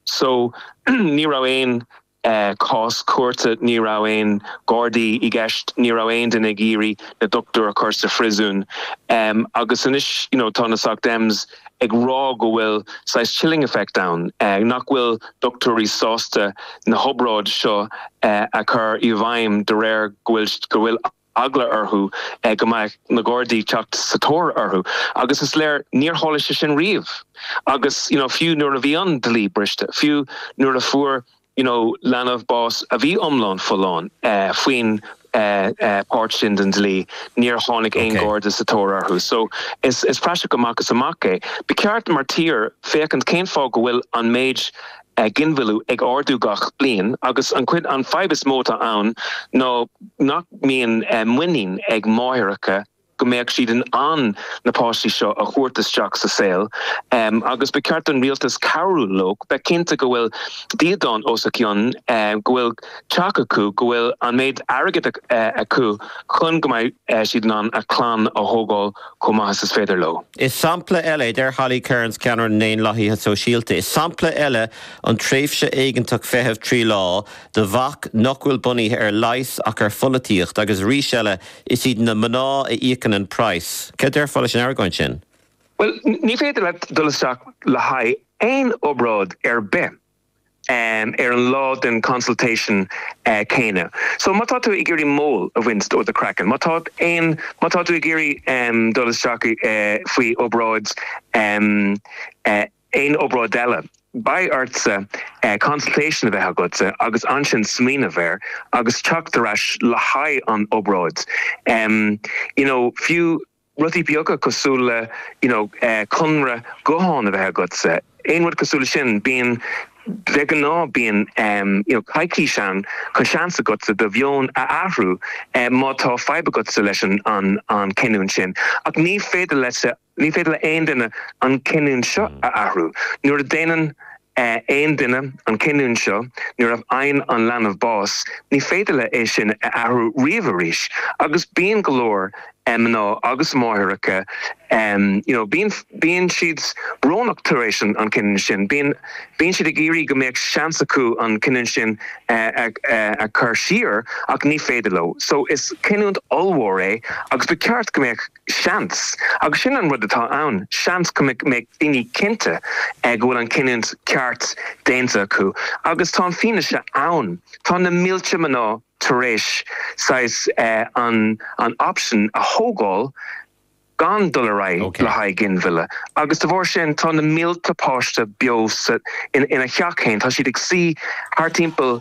so ní raibh aon cás cúirte, ní raibh aon Ghardaí i gceist, ní raibh aon duine ag iarraidh na doctúir a chur sa phriosún. Agus anois you know tá na Soc Dems ag rá go bhfuil saghas chilling effect ann, nach bhfuil doctúirí sásta na hobráid seo a chur i bhfeidhm de réir go bhfuil eagla orthu go mbeadh na Gardaí teacht sa tóir orthu agus is léir níor tharla sé sin riamh agus you know fiú nuair a bhí an dlí briste, fiú nuair a fuair you know leanbh bás a bhí iomlán folláin faoin páirt sin den dlí níor tháinig aon Garda sa tóir orthu so is praiseach amach is amach é. Ba cheart mar tír féachaint cén fáth go bhfuil an méid ginmhilleadh ag ardú gach bliain agus an chuid, an fhadhb is mó atá ann ná nach mbíonn muinín ag máithreacha go mbeadh siad in ann na páistí seo a thabhairt isteach sa saol agus ba cheart don rialtas cabhrú leo, bheith cinnte go bhfuil dídean os a cionn, go bhfuil teach acu, go bhfuil an méid airgid acu chun go mbeidh siad in ann a chlann a thógáil. chomh maith is féidir leo. Is sampla eile é, deir Holly Cairns, ceannaire na nDaonlathaithe Sóisialta, is sampla eile an tréimhse éigeantach feitheamh trí lá de bhac nach bhfuil bunaithe ar leigheas ach ar pholaitíocht agus arís eile is iad na mná a íocann an praghas. Céard a déarfá leis an argóint sin? Bhuel, ní féidir leat dul isteach le haghaidh aon obráid ar bith. ar an lá den consultation céanna. So má tá tú ag iarraidh mole a bhaint ó do chraiceann, má tá aon, má tá tú ag iarraidh dul isteach faoi obráid, aon obráid eile, beidh ortsa consultation a bheith agatsa agus ansin smaoineamh air agus teacht ar ais le haghaidh an obráid. You know, fiú. Rudaí beaga cosúil le, you know, conradh gutháin a bheith agatsa, aon rud cosúil leis sin. Bíonn, de ghnáth bíonn, you know, coicís ann chun seans agatsa do mheon a athrú má tá fadhb agatsa leis an chinniúint sin. Ach ní féidir leis, ní féidir le haon duine an chinniúint seo a athrú. Nuair a déanann, aon duine an cinniúint seo nuair a fhaigheann an leanbh bás, ní féidir leo é sin a athrú riamh arís agus bíonn go leor mná agus máithreacha you know bíonn bíonn siad brónach tar éis an an cinniúint sin, bíonn bíonn siad ag iarraidh go mbeadh seans acu an cinniúint sin a a a chur siar ach ní féidir leo. So is cinniúint ollmhór é agus ba cheart go mbeadh. Seans, agus sin an rud atá ann, seans go mbeidh daoine cinnte go bhfuil an cinniúint cheart déanta acu. Agus tá an fianaise ann. Tá na mílte mná tar éis saghas an option a thógáil gan dul ar aghaidh le haghaidh ginmhilleadh. Agus de bharr sin, tá na mílte páiste beo ina theach féin, tá siad ag suí thart timpeall,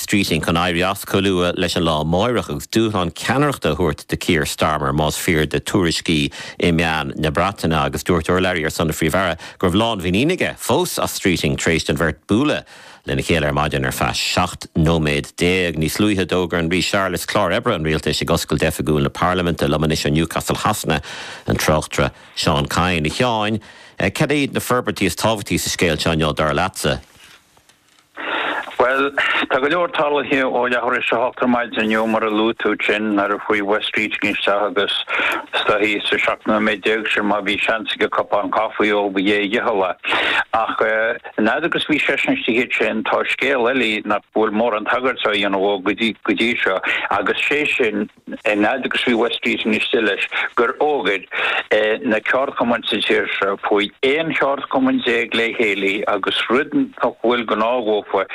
Streeting chun éirí as chomh luath leis an lá amáireach agus dúshlán ceannaireachta a thabhairt do Keir Starmer más fíor do tuairiscí i meáin na Breataine agus dúirt urlabhraí ar son an Phríomh-Aire go raibh lánmhuinín aige fós as Streeting tar éis don bheirt bualadh lena chéile ar maidin ar feadh 17 nóiméad. Níos luaithe d'fhógair an Rí Charles clár oibre an rialtais ag oscailt oifigiúil na parlaiminte liom anois ó Newcastle Shasana an tráchtaire Seán Kyne. A Sheáin, cad iad na forbairtí is tábhachtaí sa scéal seo inniu dar leatsa? Bhuel, tá go leor tarlaithe ó leathuair tar éis a hocht ar maidin inniu, mar a luaigh tú, sin nuair a chuaigh Wes Streeting isteach agus is dóichí sa seacht nóiméad déag sin má bhí seans aige cupán caifí a ól b'é a dhícheall é. Ach an fhad agus bhí seisean istigh ansin, tá scéal eile nach bhfuil mórán tagairt á dhéanamh dhó go dtí seo, agus sé sin, An fhaid agus bhí Wes Streeting istigh leis gur fhógair na ceardchumainn sa tír seo chuaigh 11 cheardchumann le chéile agus rud nach bhfuil gnách dhófa,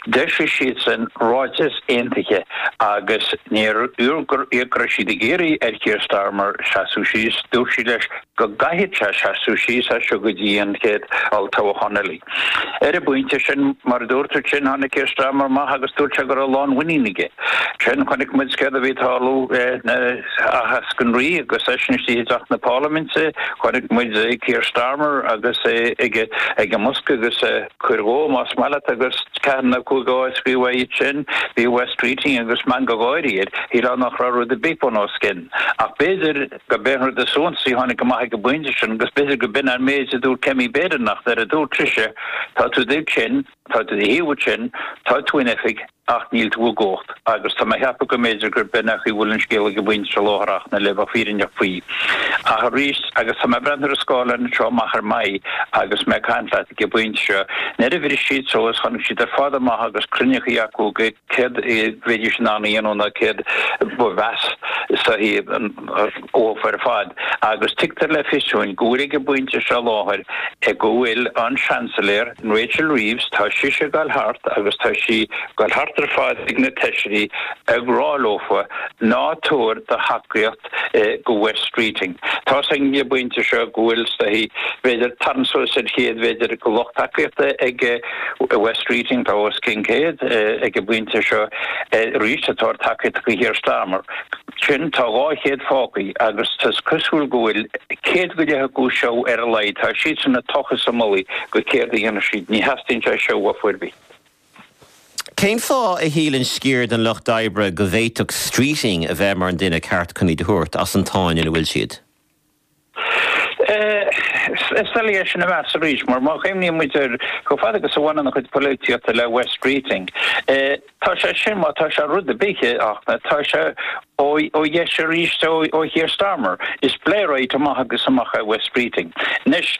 d'eisigh siadsan ráiteas aontaithe agus níorbh é go raibh siad ag iarraidh ar Keir Starmer seasamh síos, dúirt siad leis go gcaithfeadh sé seasamh síos as seo go dtí an chéad olltoghachán eile. Ar an bpointe sin, mar a dúirt tú ansin, tháinig Keir Starmer amach agus dúirt sé go raibh lánmhuinín aige. Ansin, chonaic muid céard a bhí ag tarlú le haitheasc an rí agus eisean istigh i dTeach na Parlaiminte, chonaic muid Keir Starmer agus é ag an mbosca agus é ag cur dhó más maith leat, agus ceathair nó cúig de shuíocháin uaidh sin, bhí Wes Streeting agus meangadh gáire air, shílfeá nach raibh rud ar bith bun os cionn, ach b'fhéidir, Go mbeidh an rud is suntasaí, tháinig amach ag an bpointe sin, agus b'fhéidir gur b'in an méid a dúirt Kemi Badenoch, nuair a dúirt sise, Tá tú ansin, tá tú i do shuí ansin, tá tú in oifig, ach níl tú i gcumhacht. Agus tá mé ag ceapadh go mb'fhéidir gurb in é an chaoi a bhfuil an scéal ag an bpointe seo láithreach, le bheith fírinneach faoi. Ach arís, agus tá mé ag breathnú ar an scáileán anseo amach ar m'aghaidh agus mé ag caint leat ag an bpointe seo, nuair a bhris siad suas, tháinig siad ar fad amach agus cruinnithe acu ag Céard a bheidís in ann a dhéanamh nó céard ba mheasa is dóichí dhófa ar fad. Agus tugtar le fios dúinn go bhfuil ag an bpointe seo i láthair go bhfuil an Seansailéir, Rachel Reeves, tá sise ag dul thart agus tá sí ag dul thart ar fad ag na feisirí ag rá leofa, ná tabhair do thacaíocht go Wes Streeting. Tá's againn ag an bpointe seo go bhfuil, stoith, b'fhéidir, tarraingt suas ar chéad, b'fhéidir, go lucht tacaíochta ag Wes Streeting, tá os cionn céad ag an bpointe seo arís, atá ag tacaíocht go Keir Starmer. Sin, tá dhá chéad fágthaí, agus tá sé cosúil go bhfuil céad go leith acu seo ar a laghad, tá siadsan ag tochas a mullaí go céard a dhéanfaidh siad. Ní theastaíonn sé seo uathu ar bith. Cén fáth a shíleann sciar den lucht oibre go bhféadfadh Streeting a bheith mar an duine ceart chun iad a thabhairt as an tsáinn ina bhfuil siad? Is doiligh é sin a mheas arís, mar má chuimhníonn muid air, chomh fada agus a bhaineann a chuid polaitíochta le Wes Streeting, tá sé sin, má tá sé rud ar bith, tá sé Ó dheis arís ó Keir Starmer, is Blairite amach agus amach é Wes Streeting. Anois,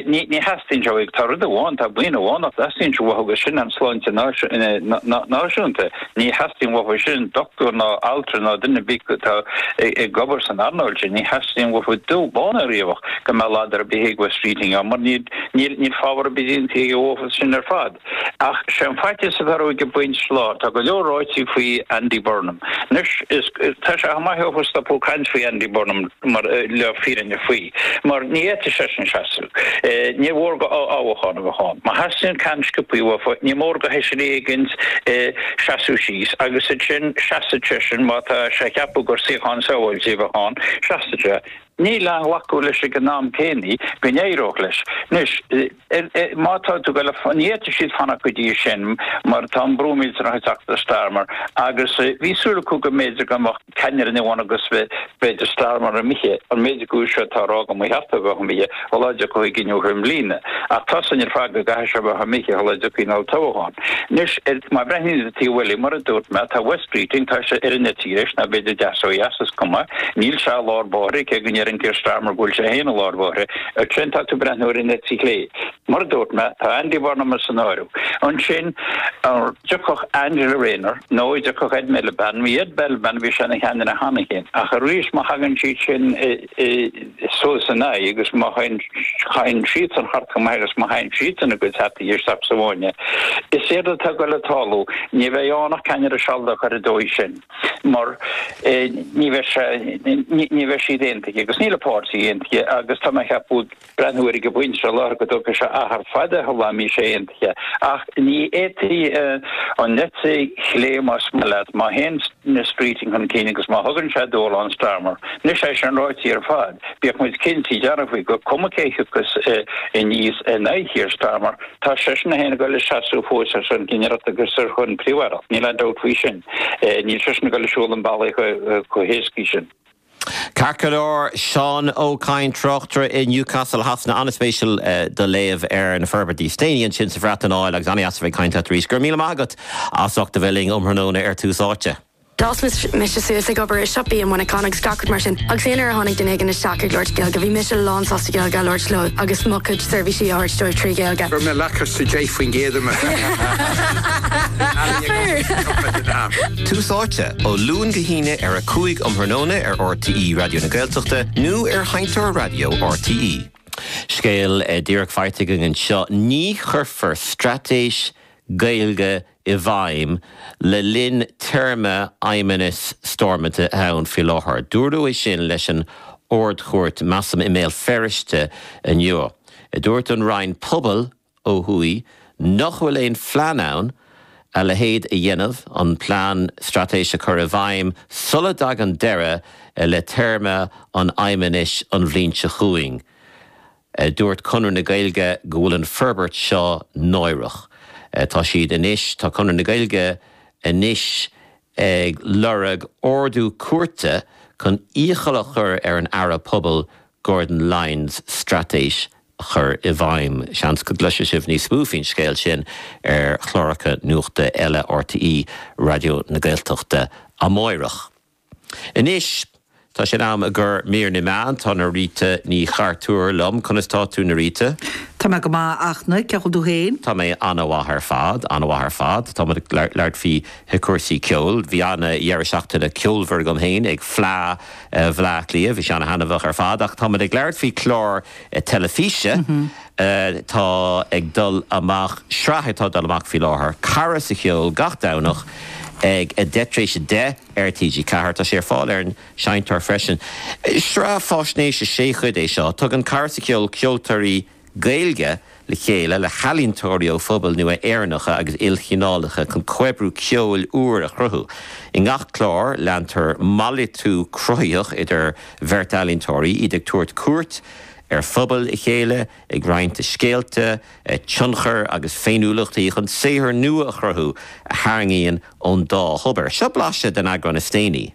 ní theastaíonn sé uaidh, tá rud amháin, tá buíon amháin nach dteastaíonn sé uathu agus sin an tsláinte náisiúnta. Ní theastaíonn uathu sin dochtúir ná altra ná duine ar bith atá ag obair san earnáil sin, ní theastaíonn uathu dubh, bán ná riabhach go mbeadh ladar ar bith ag Wes Streeting ann mar níl fábhar ar bith déanta aige dófa sin ar fad. Ach sé an faitíos atá ar go, ag baint slán. Tá go leor ráite faoi Andy Burnham. Anois, is, tá sé chomh maith acu stopadh ag caint faoi Andy Burnham mar, le fírinne faoi, mar ní fhéadfaidh seisean seasamh. Níor mhór go fothoghchán a bheith ann. Má theastaíonn cinneadh sciobtha uathu, ní mór go fheisire éigin seasamh síos agus ansin seasfaidh seisean, má tá sé ag ceapadh gur suíochán sábháilte a bheadh ann, seasfaidh sé. Níl aon ghlacadh leis ag an am céanna go n-éireodh leis. Anois, má tá tú ag fanacht, ní fhéadfaidh siad fanacht go dtí sin mar tá an brú millteanach ag teacht ar Starmer agus bhí súil acu go mb'fhéidir go mbeadh ceannaire nua ann agus b'fhéidir Starmer imithe, an méid acu seo atá á rá go mba cheart dó a bheith imithe. Sula dtiocfadh an cinneadh i mbliana, ach tá a fhios againn ar fad go gcaithfidh sé bheith imithe sula dtiocfaidh an olltoghchán. Anois, arís má bhreathnaíonn tú cé a bhfuil mar a dúirt mé, tá Wes Streeting, tá sé ar an eite dheis, nó b'fhéidir deis ó dheis, is cuma, níl sé i lár bóithre, cé go ndeireann Keir Starmer go bhfuil sé féin i lár bhóithre. Ansin tá tú ag breathnú ar an eite chlé. Mar a dúirt mé, tá Andy Burnham san áireamh. Ansin, an dtiocfadh Angela Rayner, nó an dtiocfadh Ed Miliband, bhí Ed Miliband, bhí sé ina cheannaire cheana féin, ach arís má thagann siad sin, suas ina aghaidh agus má théann, théann siadsan thart chomh maith agus má chaitheann siadsan a gcuid hataí isteach sa bhfáinne, is éard atá ag dul ag tarlú, ní bheidh ann ach ceannaire sealadach ar an dóigh sin mar ní bheidh sé, ní bheidh siad aontaithe agus níl an páirtí aontaithe agus tá mé ag ceapadh, breathnú air ag an bpointe seo láthair go dtógfaidh sé achar fada sula mbeidh sé aontaithe, ach ní fhéadfaidh an eite chlé, más maith leat, má théann Streeting chun cinn agus má thugann sé dúshlán Starmer. Anois é sin ráite ar fad, bíodh muid cinnte dearfa faoi, gur cuma cé thiocfas aníos in aghaidh Keir Starmer, tá seisean é féin ag dul ag seasamh fós ar son ceannaireacht agus ar son príomh-aireacht, níl aon dabht faoi sin. Níl seisean ag dul ag siúl ón mbealach chomh héasca sin. Ceart go leor, Seán Ó Cadhain, tráchtaire i Newcastle Shasana, an-spéisiúil do léamh ar na forbairtí is déanaí ansin sa Bhreatain, agus ar ndóigh beidh muid ag caint leat arís. Go raibh míle maith agat as ucht a bheith linn um thráthnóna ar Tús Áite. D'fhás mise suas ag obair i siopaí i Muineachán agus gach rud mar sin agus aon uair a tháinig duine éigin isteach ag labhairt Gaeilge bhí mise lán sásta Gaeilge a labhairt leo agus mo chuid seirbhísí a thabhairt dóibh trí Ghaeilge. 10%. Tús Áite, ó Luan go hAoine ar a 5 um thráthnóna ar RTÉ Raidió na Gaeltachta nó ar sheinnteoir raidió RTÉ. Scéal díreach faighte againn anseo, ní chuirfear Straitéis Gaeilge i bhfeidhm le linn téarma Fheidhmeannas Stormont atá ann faoi láthair. Dúradh é sin leis an Ard-Chúirt, measaim, i mBéal Feirste inniu. Dúirt an Roinn Pobail, ó thuaidh nach bhfuil aon phlean ann a leithéid a dhéanamh, an plean straitéis a chur i bhfeidhm sula dtagann deireadh le téarma an Fheidhmeannais an bhliain seo chugainn. Dúirt Conradh na Gaeilge go bhfuil an forbairt seo náireach. Tá siad anois, tá Conradh na Gaeilge anois ag lorg ordú cúirte chun iachall a chur ar an Aire Pobail Gordon Lyons straitéis a chur i bhfeidhm. Seans go gcloisfidh sibh níos mó faoin scéal sin ar chláracha nuachta eile RTÉ Raidió na Gaeltachta amáireach. Anois, tá sé in am ag ár mír na meán. Tá Norita Ní Chartúir liom. Conas tá tú, Norita? Tá mé go maith, a Fhachtna. Cén chaoi a bhfuil tú féin? Tá mé an-mhaith ar fad, an-mhaith ar fad. Tá muid ag labhairt faoi chúrsaí ceoil. Bhí ana dheireadh seachtaine ceolmhar agam féin ag Fleadh Bhleá Cliath. Bhí sé ana thaitneamhach ar fad. Ach tá muid ag labhairt faoi clár teilifíse atá ag dul amach, sraith atá ag dul amach faoi láthair, Cara sa Cheol, gach Domhnach ag a deich tar éis a deich ar TG4. Tá sé ar fáil ar an Seinnteoir freisin. Sraith fáisnéise sé chuid é seo. Tugann Cara sa Cheol ceoltóirí Gaeilge le chéile le healaíontóirí ó phobail nua Éireannacha agus ilchineálacha chun comhoibriú ceoil úr a chruthú. I ngach clár, leantar malartú cruthaitheach idir bheirt ealaíontóirí, iad ag tabhairt cuairt ar phobail a chéile, ag roinnt a scéalta, a tionchair agus féiniúlachtaí chun saothar nua a chruthú a tharraingíonn ón dá thobar. Seo blaiseadh den eagrán is déanaí.